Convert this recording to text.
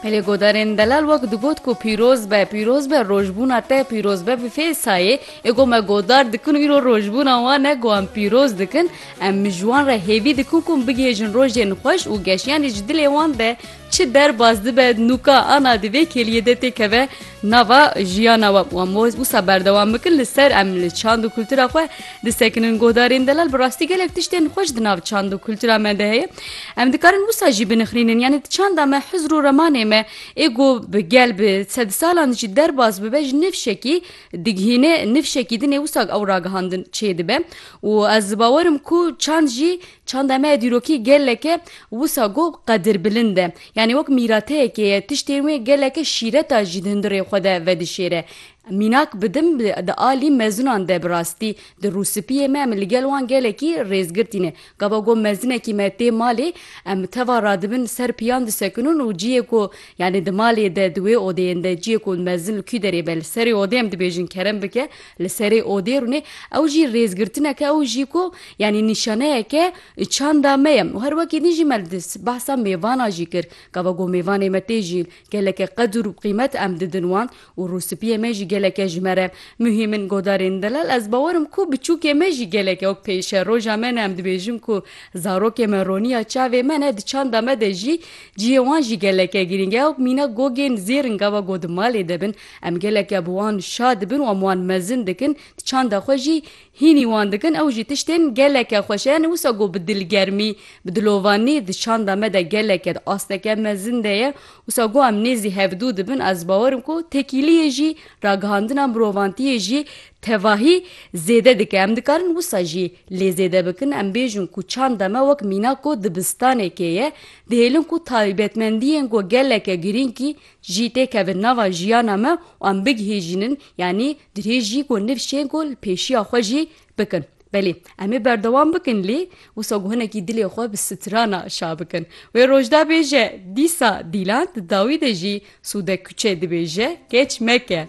Pelê godarên delal wek digot ku pîroz be, pîroz be rojbûna te, pîroz be bi fê sayê, ê ku me godar dikin û îro rojbûna wan e ku em pîroz dikin, em ji wan re hêvî dikin ku bigihêjin rojên xweş û geşiyanê ji dilê wan de çi derbas dibe nûka ana di vê kêliyê de têkeve, Nava jiyana we û em wez wisa berdewam bikin li ser em li çand û kultura xwe disekinin godarên delal bi rastî gelek tiştên xweş di nav çand û kultura me de heye em dikarin wisa jî binixrînin yanî di çanda me hizr û remanê me ê ku bi gel bi sedsalan jî derbas bibe ji nifşekî digihîne nifşekî dinê wisa ew ragihandin çêdibe û ez bawerim ku çand jî Çand em e dîrokî geleke wisa ku qedirbilind e. Yanî wek mîrateyekê ye, tiştên wê geleke şîreta jî di hundirê xwe de vedişêre. Mînak bidim di alî mezinan de bi rastî di rûspiyê me em li gel wan gelekî rêzgirtîne. Gava ku mezinekî me tê malê em teva radibin ser piyan disekinin û ciyê ku yanî di malê de di wê odeyên de ciyê ku mezin li kû derê be li serê odê em dibêjin kerem bike Li serê odê rûnê ew jî rêzgirtinek e û jî ku yanî nîşaneyek e çanda me ye û her wekî din jî me li behsa mêvana jî kir. Gava ku mêvanê me tê jîn geleke qedir û qîmet em didin wan û rûspiyê me jî geleke ji me re muhîm in. Godarên delal ez bawer im ku biçûkê me jî gelek ew pêş e. Roja me ne em dibêjin ku zarokê me roniya çavê me ne di çanda me de jî ciyê wan jî geleke girîng e. Ew mîna gogên zêr in gava ku di malê de bin Em geleke bi wan şa dibin û em wan mezin dikin, di çanda xwe jî hînî wan dikin, ew jî tiştên geleke xweş e. Yanî wisa ku bi dilgermî, bi dilovanî di çanda me de geleke di asteke mezin de ye, wisa ku em nêzî hevdû dibin, ez bawer im ku tekîliyê jî, ragihandina mirovantiyê jî tevahî zêde dike. Em dikarin wisa jî lê zêde bikin, em bêjin ku çanda me wek mîna ku dibistanekê ye, dihêlin ku taybetmendiyên ku geleke girîngî Jî tê kevin nava jiyana me û em bigihêjînin yanî dirêjî ku nifşên ku li pêşiya xwe jî bikin. Belê em ê berdewam bikin lê wisa ku hinekî dilê xwe bi strana şa bikin. Wê roj da bêje dîsa dîlan di dawî de jî sûde kuçe dibêje keç meke.